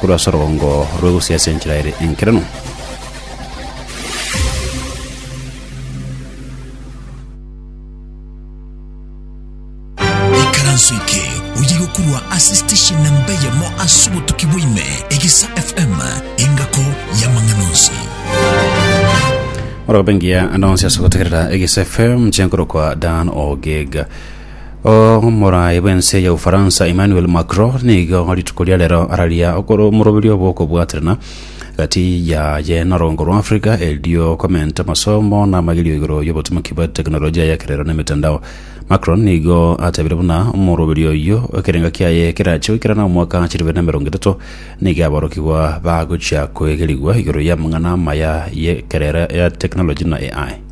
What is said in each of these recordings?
korwa ase orogongo rw'egusia ase enchera ere enkeranu. Ikaranso eke oye gokurwa ase station namba eyemo ase obotuki bwaime egesa fm engako y'amang'ana onsi Orogopengia ande onsi ase gotegerera Egisa FM chenkorokwa Dan Ogega. Omoraai bw'ense ya Ufaransa Emmanuel Macron nigo rituko ria rero araria okoro omoroberio bw'okobwaterana gati yaye na orongo rwa Africa erio komenta amasomo na amagerio igoro y'obotomaki bwa teknolojia y'ekerero na emetandao. Macron nigo atabire buna omoroberio oyio ekerengo kiaye kerachia goikerana omwaka chilifu bibere na emerongo etato nigo aborokigwa bagochia koegerigwa igoro y'amang'ana amaya y'ekerero ya teknoloji na AI.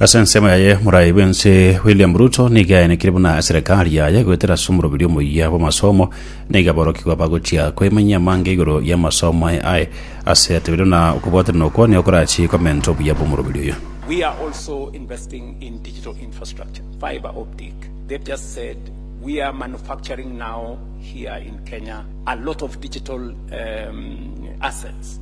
Ase ensemo yaye morai bwense William Ruto niga aenekire buna eserekari yaye goetera ase omoroberio omoyia bw'amasomo niga aborokigwa bagochia koimanyia amange igoro y'amasomo aye aye ase yatebire buna okobwatanera okwo nigo korachie komenta obuya bw'omoroberio oyo. We are also investing in digital infrastructure, fiber optic. They've just said we are manufacturing now here in Kenya a lot of digital um, assets.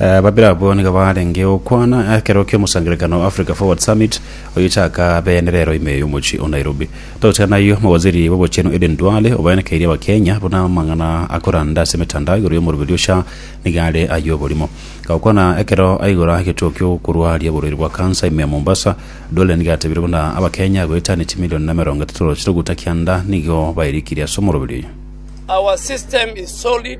Babere abwo nigo barenge gokwana ekero ki'omosangererekano o Africa Forward Summit oyochaka bene rero ime y'omochie o Nairobi. Togochika nayio, omowaziri bw'obochenu Aden Duale obayanekeirie Abakenya buna amang'ana akoranda ase emetandao igoro y'omoroberi o sha nigo are ay'oborimo. Gokwana ekero aigora egetuo ki'okorwaria oborwaire bwa kansa ime Mombasa, Duale nigo atebire buna Abakenya goeta ne chimilion emerongo etato chiroguta kianda nigo bairikirie ase omoroberi oyo. Our system is solid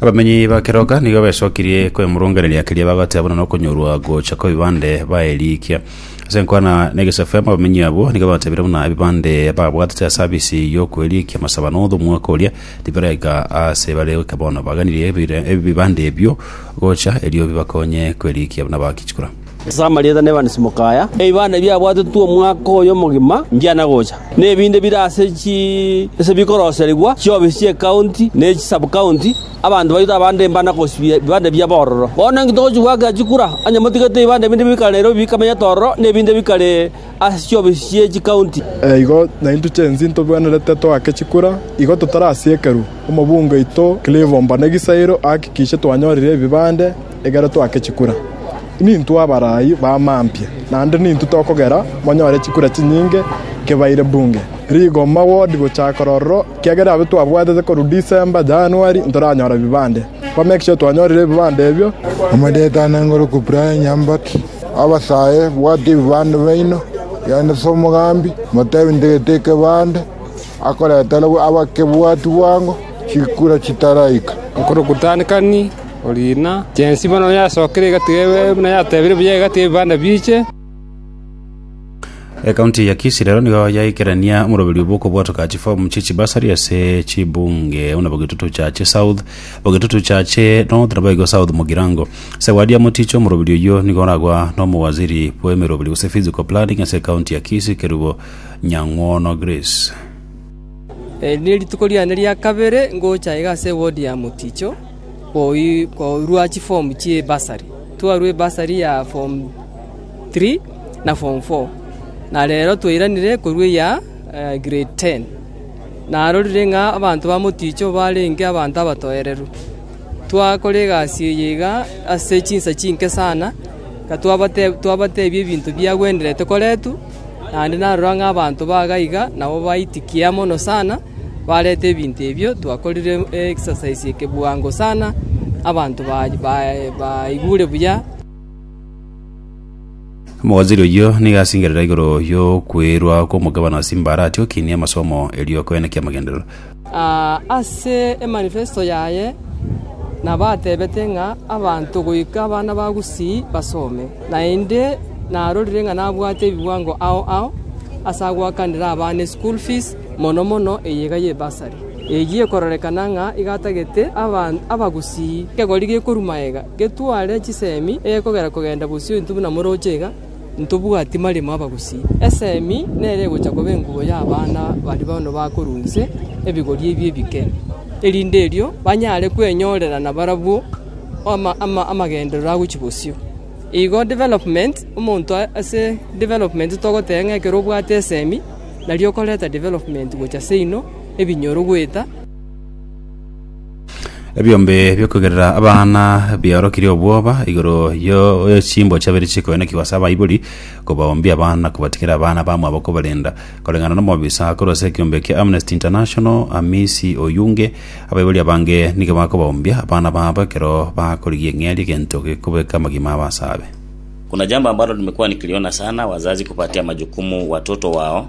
Abamenyi ba Keroka nigo besokirie kwemurunganeria keria bagoteeba buna nokonyorwa gocha kw'ebibande baerikia. Ase enkwana na egesafemu abamenyi abwo nigo batebire buna ebibande babwatete ase abisi y'okwerikia masaba na othwa omwaka oria tibiraika ase bare goika bono. Baganirie ebire- ebibande ebio gocha erio bibakonye kwerikia buna bakichikora. Ase amarieta na ebanisimoka aya, ebibanda ebiabwatetwe omwaka oyo omogima mbiana gocha, na ebinde bire ase chi... ase bikoroserigwa chiofisi chi'ekaunti ne chisub-county, abanto baito abande mbana kosibia ebibanda ebiabo ororo. Bono inki togochia goakera chikura, onye motigete ebibanda ebinde bikare nerobio bikamenyete ororo, na ebinde bikare ase chiofisi chie chikaunti? Igo naintwe chionsi ntobwenerete toake chikura, igo totarasiekerwa. Omobunge oito Clive Ombane Gisairo ahakikishe twanyorire ebibande. Ekero twake chikura, nintwe abarai ba mampia, naende nintwe tokogera monyore chikura chinyinge kebaire bunge. Rigoma wodi gochaka ororo, ekiagera abwo twabwatete korwa December, January ntoranyora ebibande. Kwa make sure twanyorire ebibande ebio. Omodeto aneng'orokwe Brian Nyambati, Abasae, bwata ebibande biaino, yaani ase omogambi, motebi ntegete ekebande, akoretere abakebwati bwango chikura chitaraika. Nkorokwa Dan Kani, Oriina, chensi bono yasokire egati yaye, buna yatebire buya egati y'ebibanda biiche. Ekaunti ya Kisii rero nigo yaikerania omoroberio bw'okobwatoka chifomu chie chibasari ase chibunge buna Bogetutu Chache South, Bogetutu Chache North na Boigo South Mugirango. Sewadia Moticho omoroberio oyio nigo oragwa n'omowaziri bw'emeroberi gose physical planning ase ekaunti ya Kisii Kerubo Nyang'wono Grace. Eri nerituko riane ria kabere ngocha iga ase ewodi ya Moticho. korwa chifomu chi'ebasari, twarwa ebasari ya fomu tiri na fomu foo, na rero twairanire korwa eya grade ten. Narorire ng'a abanto ba Moticho barenge abanto abatoereru. Twakora egasi eye iga ase chinsa chinke sana, na twabatebia ebinto biagwenerete koretwa. naende narora ng'a abanto baga iga nabo baitikia mono sana, barete ebinto ebio twakorire exercise eke bwango sana, abanto ba- bae- baigure buya. Omowaziri oyio nigo asingerera igoro yokweirwa kw'omogabane o Simba aratiokinie amasomo erio koeneka amagenderero. Ase emanifesto yaye nabatebete ng'a abanto goika abana ba gusii basome. Naende narorire ng'a nabwate ebiwango ao ao ase agoakanera abana eschool fees, mono mono eye iga ye bursary. Eyio ekororekana ng'a iga atagete abagusii. Ekegori gekorwa magega getware chisemi egekogera kogenda bosio intwe buna moroche iga. Ntobwati maremo abagusii. Esemi nere egocha koba engubo y'abana baria bono bakorwa inse, ebigori ebio ebike, erinde erio banyare kwenyorera nabarabwo amagenderero agochia bosio. Igo development, omonto ase development togoteba ng'a ekero obwate esemi, nario okoreta development gochia seino, ebinyoro goeta. Ebiombe biokogerera abana biaorokirie obwoba igoro yo- y'echimbo chiabere chikoenokigwa ase abaibori, kobaoombia abana na kobatigera abana bamwabo kobarenda. Koreng'ana nomobisa korwa ase ekiombe kia Amnesty International, Amisi Oyunge, abaibori abange nigo bakobaoombia abana babo ekero bakorigia eng'eria egento gekobeka amagima abo asaabe. Kuna jambo ambalo limekuwa nikiliona sana, wazazi kupatia majukumu watoto wao.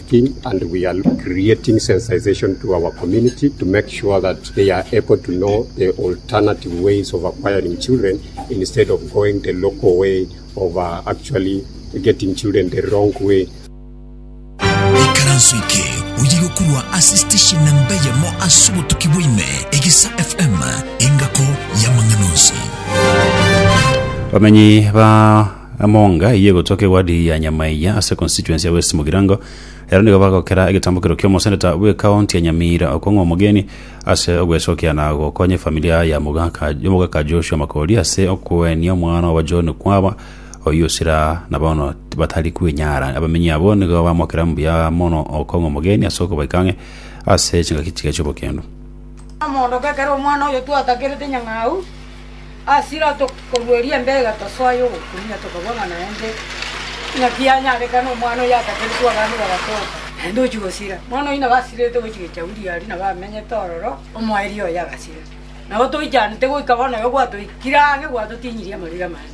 Ekaranso eke oye gokorwa ase station namba eyemo ase obotuki bwa ime, Egesa FM, engako y'amang'ana onsi. Bamenyi ba Emonga eyio egotoa k'ewadi ya Nyamaiya ase econstituency ya West Mugirango. Ero nigo bagokera egetambokero ki'omoseneta bw'ekaonti ya Nyamira okong'wa omogeni ase ogwesokia na gokonya efamilia ya omogaka Joshua Makori ase okoenia omwana obo John Kwaba oyio osira na bono batari kwenyara. Abamenyi abwo nigo bamokera mbuya mono okong'wa omogeni ase okobaika ang'e ase chingaki chiye chi'obokendo. Mogondo, Ekero omwana oyo twatakerete nyang'au. Ase ira tokorueria embega tosoa y'ogokumia, tokabua ng'a naende naki yanyarekana omwana oyio atakeretwe abande bagatoka, naende ochia gosira. Omwana oyio nabo asirete gochia echauri aria nabo amenyete ororo, omoerio oye agasira. Nabo toichanete goika bono oyo gwatoikire ang'e gwatotinyirie amariri amane.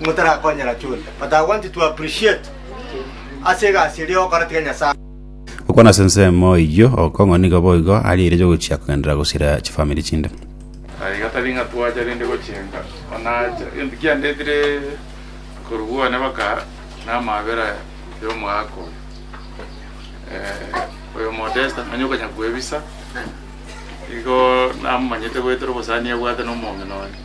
motarakonyera chonde but I want to appreciate ase egasi eria ogokora tiga Nyasaye Okwana ase ensemo eyio okong'u nigo boigo aria eire yogochia kogenderera gosira chifamiri chinde. Aye iga tari ng'a twacha rende gochenga, onaacha. Egento kiandetire korwa bwane baka namabera y'omoaka oyo. Eh, oyo Modesta, nonya okanya kwebisa, igo namomanyete goetera obosani abwate na omoomino oye.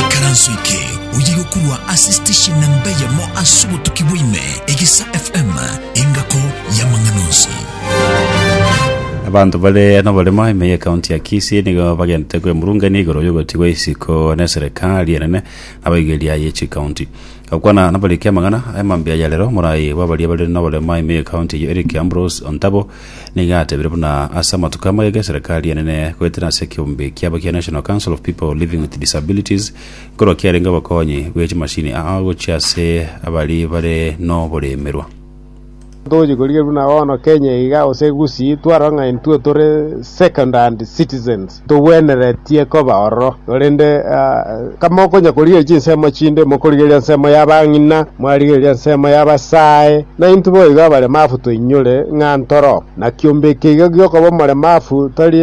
Ikaranso eke oye gokorwa ase station na mbe yamo ase obotuki bwaime egesa FM engako y'amang'ana onsi. Abanto bare noboremo ime ya kaunti ya Kisii nigo bagenderete kwemurungania igoro y'ogotigwa isiko ne serikali enene abaigeria ye chikaunti gokwana nabariki amang'ana amambia ya rero morai bw'abaria bare noboremo ime ya kaunti eye Eric Ambrose Ontabo Nigo atebire buna ase amatuko amagega eserekari enene goetera ase ekeombe kiabo kia National Council of People Living with Disabilities nkorwa kiarenge obokonyi bwe chimashini aa gochia ase abari bare noboremerwa. Togochia korigereria buna bono Kenya iga gose Gusii twarora ng'a intwe tore second hand citizens. Togweneretie koba ororo, korende kamokonya korigereria chinsemo chinde, mokorigereria ensemo y'abang'ina, mwarigereria ensemo y'abasae, na intwe boigo abaremafu toinyore ng'a ntoro na kiombe eke iga gi'okoba omoremafu, tari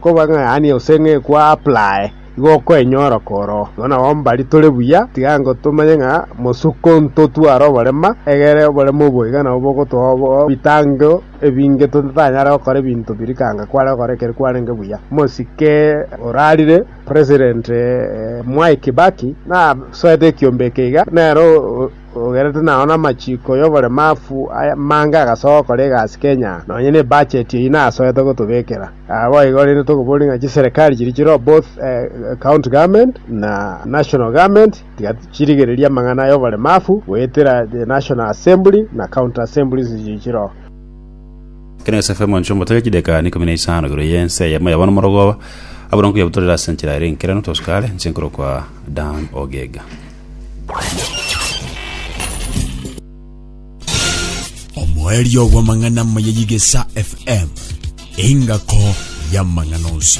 koba ng'a yaani gose ng'a ekwa apply igo okoenyora koro igo nabo mbari tore buya, tiga ango tomanye ng'a mosuko ntotware oborema egere oborema obo iga nabo bogotoa obo obitango. ebinge totanyare gokora ebinto biria ekanga kware gokora ekero kwarenge buya. Omosike orarire president Mwai Kibaki nasoete ekiombe eke iga nere ogerete nao namachiko yoboremafu amange agasoa gokora egasi Kenya nonye ne budget eyio nasoete gotobekera. Naboigo rende tokoboria ng'a chiserekari chiria chire both county government na national government. Tiga chirigereria amang'ana y'oboremafu goetera the National Assembly na County Assemblies chichire oo. Ekero Yosefu omonchwa omotake chideka ikomi na isano igoro y'ense eyemo yabana omorogoba, abura nkoyabutorera ase enchera ere enkeranu tosuka are, inche nkorokwa Dan Ogega. Omoerio bw'amang'ana amaya y'Igesa FM, engako y'amang'ana onsi.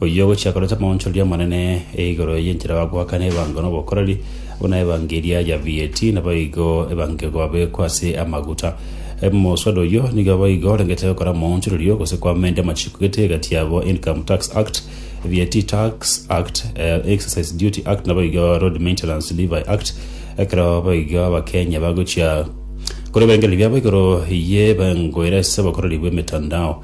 Oyio ogochia korenta amaonchori amanene e igoro y'enchera bagoakana ebango n'obokoreri, buna ebango eria ya VAT, naboigo ebango egobekwa ase amaguta. Omoswada oyio nigo boigo orengete gokora amaonchori oyio gose koamenda amachiko gete egati yabo Income Tax Act, VAT Tax Act, Exercise Duty Act naboigo Road Maintenance Levy Act ekero boigo Abakenya bagochia korwa ebirengererio biabo igoro y'ebango ere ase obokoreri bw'emetandao.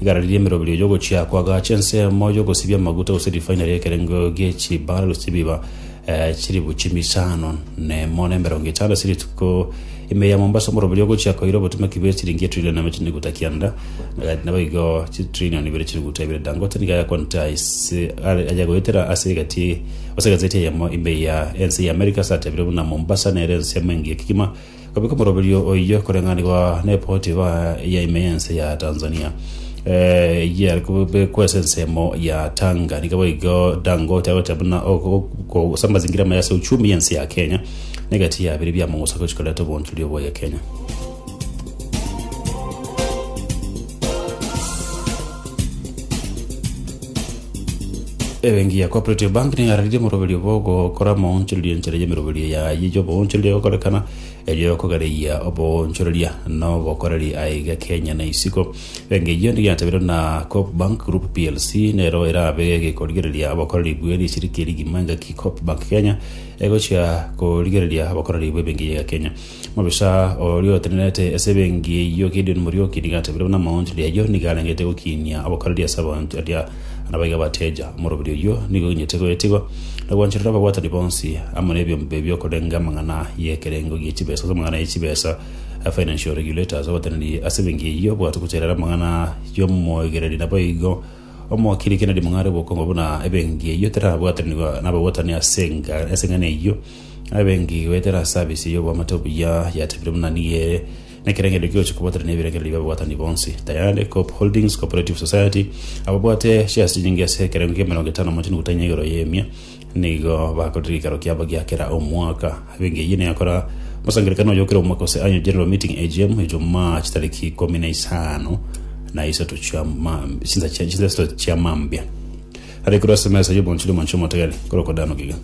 Igare riria emeroberio y'ogochia kw'agacha ensemo y'ogosibia amaguta gose rifaini ri'ekerengo gie chibara rosibiwa eh, chiribu chimisano nemo na emerongo etano ase rituko ime ya Mombasa omoruberio ogochia koira obotomeki bwe chiringi etrilion eme chiniguta kianda eh, nabo igo chitrilion ibere chiniguta ibere Dangote nigo ayakonta ase are- ayagoetera ase egati ase egazeti eyemo ime ya ense ya America ase atebire buna Mombasa nere ensemo engiya kegima Gobeka omoroberio oyio koreng'anigwa neripoti ya ime y'ense ya Tanzania eyio yare kobekwa ase ensemo ya Tanga. Nigo boigo Dangote agocha buna ogosa amazingira amaya ase uchumi y'ense ya Kenya na egati ya bire bia mogoso gochi koreta obonchori oboya Kenya. Ebenki ya Cooperative Bank neyararirie omoroberio bw'ogokora moonchoreria enchera y'emeroberio yaye y'oboonchoreria egokorekana, erio ekogereia oboonchoreria na obokoreri aiga Kenya na isiko. Ebenki eyio niyatabirwe na Coop Bank Group plc nero erabe gekorigereria obokoreri bwe rishiriki rigima engaki Coop Bank Kenya egochia korigereria obokoreri bw'ebenki ya Kenya. Mobisa oria otenerete ase ebenki eyio Gideon Muriuki nigo atebirie buna amaonchori ayio nigo arengete gokinia obokoreri ase abanto baria na baiga bateja. Omoroberi oyio nigo oinyete goetigwa na gwancherera ababwatani bonsi amo nebiombe biokorenga amang'ana y'ekerengo gie chibesa ase amang'ana ye chibesa, financial regulators. Oboteneneri ase ebenki eyio bogachia gocherera amang'ana y'omoegereri naboigo omokiri Kennedy Mung'are obokongo buna ebenki eyio terabwatanigwa nababwatani ase eng'ana eyio. abengi goetera ase abise y'oboamate obuya yatebire buna nigo ere nekerengererio ki'ogochia kobwatana nebirengererio bi'ababwatani bonsi. Tayari Coop Holdings Cooperative Society ababwate chiasi nyinge ase ekerengo ki'emerongo etano mochenu gotainya igoro y'emia nigo bakorire gikaro kiabo gia kera omwaka. Abengi eyio negakora mosangererekano oyo kera omwaka gose Annual General Meeting, AGM, Ijumaa chitariki ikomi na isano na isato chia mam- chinsa chia- chinsa isato chia mambia. Are korwa ase emesa y'oboonchori omonche omotogene korokwa Dano Giga.